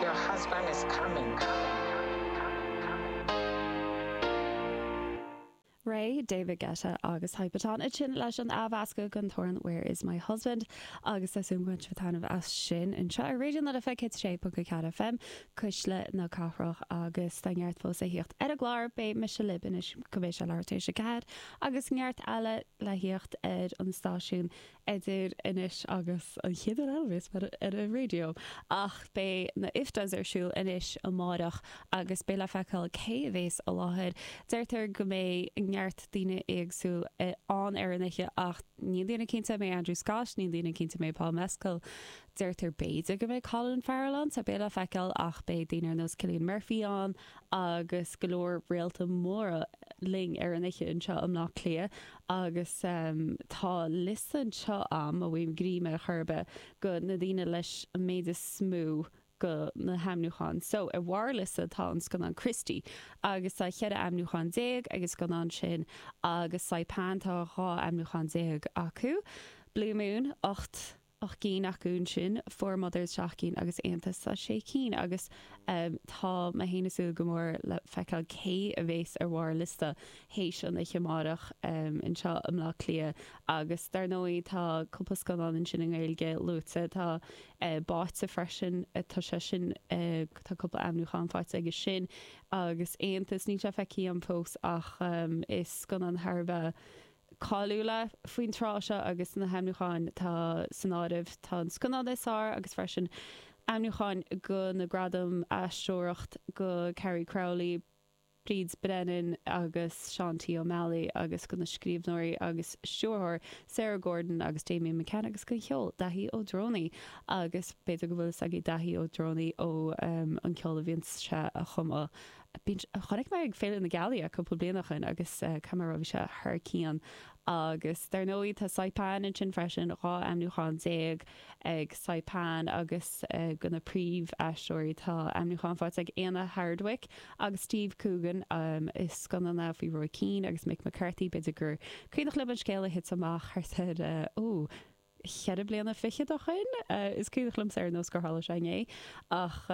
Your husband is coming. Raye, David Guetta agus Hypaton ansin leis an athmheascadh gon traein 'Where Is My Husband' agus tá súil am go mbain sibh taitneamh as sin anseo ar Raidió na Life 106.4 FM, Cuisle na Cathrach agus tá neart fós le thíocht ar an gclár, beidh mise libh anois go mbeidh sé leathuair tar éis a ceathair agus neart eile le thíocht ar an stáisiún idir anois agus an chéad uair eile bhéas mé ar an raidió. Ach beidh na IFTAs ar siúl anois amáireach agus beidh le feiceáil cé a bhéas i láthair. Deirtear go mbeidh neart daoine éagsúil ann ar an oíche ach níl daoine cinnte an mbeidh Andrew Scott, níl daoine cinnte an mbeidh Paul Mescal. Deirtear b'fhéidir go mbeidh Colin Farrell ann so beidh le feiceáil ach beidh daoine ar nós Cillian Murphy ann agus go leor réalta móra linn ar an oíche anseo i mBleá Cliath. Agus tá liosta anseo am a bhfuil greim ar chor ar bith go na daoine leis an méid is mó go na haimniúcháin. So, ar bharr liosta tá an scannán Christy agus tá 14 aimniúchán ag an scannán sin agus Saipan tá 12 aimniúchán acu. Blue Moon, 8 ocht gcinn acu ansin, Four Mothers seacht gcinn agus Aontas tá sé cinn agus tá mé fhéin ag súil go mór le feiceáil cé a bhéas ar bharr liosta théis an oíche amárach anseo i mBleá Cliath agus dar ndóigh tá cúpla scannán ansin i nGaeilge luaite tá Báite freisin tá sé sin tá cúpla aimniúchán faighte aige sin agus Aontas níl sé feicthe agam fós ach is scannán thar a bheith cáiliúil faoin tráth seo agus na haimniúcháin atá san áireamh, tá an scannán is fearr agus freisin aimniúcháin go na gradaim aisteoireacht go Carrie Crowley, Bríd Brennan agus Seán T. Ó Meallaigh agus go na scríbhneoirí agus stiúrthóir Sarah Gordon agus Damian McCann agus go an cheol, Daithí Ó Drónaí agus b'fhéidir go bhfuil fhios agaibh Daithí Ó Drónaí ó an ceol a bhíonns sé a chumadh. Bhí, chonaic mé é ag Féile na Gealaí cúpla bliain ó shoin agus caithfidh mé a rá bhí sé thar cionn. Agus dar ndóigh tá Saipan ansin freisin, dhá aimniúchán déag ag Saipan agus go na príomh aisteoirí tá aimniúchán faighte ag Éanna Hardwicke agus Steve Coogan i scannán faoi Roy Keane agus Mick McCarthy. B'fhéidir gur cuimhneach libh an scéal a thuit amach thart ar, oh, cheithre bliana fichead ó shoin. Is cuimhneach liomsa ar nós gur tharla sé inné. Ach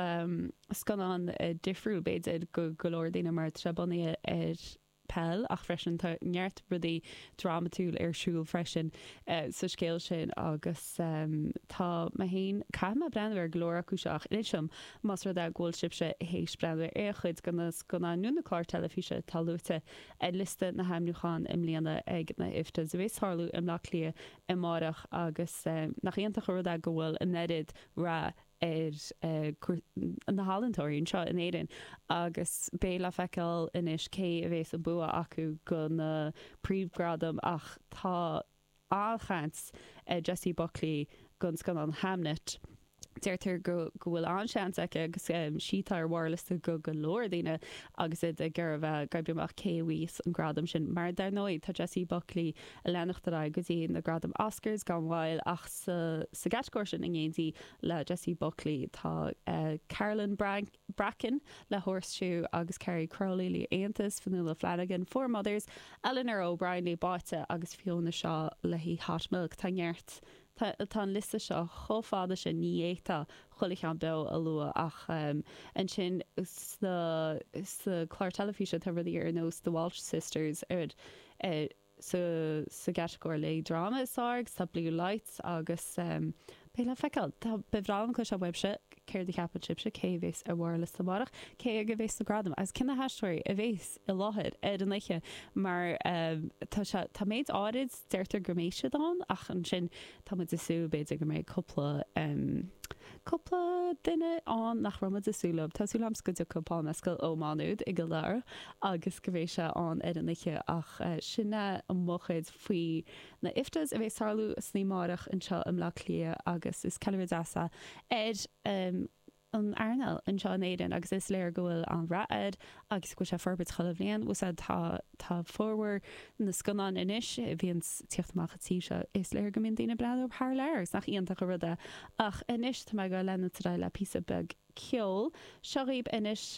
scannán difriúil b'fhéidir go go leor daoine mar tá sé bunaithe ar peil ach freisin tá neart rudaí drámatúil ar siúl freisin sa scéal sin agus tá mé féin, caithfidh mé breathnú ar go leor acu seo ach inis dom más rud é go bhfuil sibhse théis breathnú ar aon chuid go na scannáin nó na cláir teilifíse atá luaite ar liosta na haimniúchán i mbliana ag na IFTAs a bhéas tarlú i mBleá Cliath amárach agus nach iontach an rud é go bhfuil an oiread rath ar na healantóirí anseo in Éirinn agus beidh le feiceáil anois cé a mbeidh an bua acu do na príomhghradaim ach tá an-chaint ar Jessie Buckley don scannán Hamnet. Deirtear go go bhfuil an-seans aici agus is í atá ar bharr liosta go go leor daoine agus iad ag iarraidh oibriú amach cé a bhíos an gradam sin. Mar dar ndóigh tá Jessie Buckley ag leanacht ar aghaidh go dtí na gradaim Oscars gan mhoill ach sa sa gcatagóir sin in éindí le Jessie Buckley tá Carolyn Bran Bracken le Horseshoe agus Carrie Crowley le Aontas, Fionnuala Flanagan, Four Mothers, Eleanor O'Brien le Báite agus Fiona Shaw le Hot Milk. Tá neart Tá tá an liosta seo chomh fada sin ní fhéadfá chuile cheann beo a lua ach ansin sa sa clár teilifíse tá rudaí ar nós The Walsh Sisters ar ar sa sa gcatagóir le dráma is fearr agus tá Blue Lights agus beidh le feiceáil tá ba bhreá liom cloisteáil uaibhse céard a cheapann sibhse cé a bheas ar bharr an liosta amárach cé aige a bheas na gradaim agus cé na haisteoirí a bheas i láthair ar an oíche mar tá sé, tá méid áirid, deirtear go mbeidh siad ann ach ansin tá muid ag súil b'fhéidir go mbeidh cúpla, cúpla duine ann nach raibh muid ag súil leo. Tá súil agam go dtiocfaidh Paul Mescal ó Má Nuad i gCill Dara agus go mbeidh sé ann ar an oíche ach sin é mo chuid faoi na IFTA's a bheas ag tarlú san oíche amárach anseo i mBleá Cliath agus is ceiliúradh deas é ar an an earnáil anseo in Éirinn agus is léir go bhfuil an-rath uirthi agus go bhfuil sí ag forbairt chuile bhliain. Tá, tá formhór na scannán anois a bhíonns ag tíocht amach as an tír seo, is léir go mbíonn daoine ag breathnú thar lear agus nach iontach an rud é. Ach anois tá mé ag leanacht ar aghaidh le píosa beag ceoil. Seo dhaoib anois.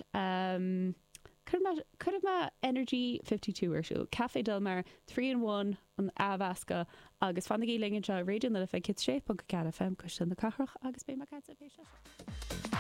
Cuirfidh mé Energy Fifty Two ar siúl, Café Del Mar, Three in One, an athmheascadh, agus fanaigí linn anseo, Raidió na Life 106.4 FM, Cuisle na Cathrach, agus beidh mé caite ag Pé Scéal Seo.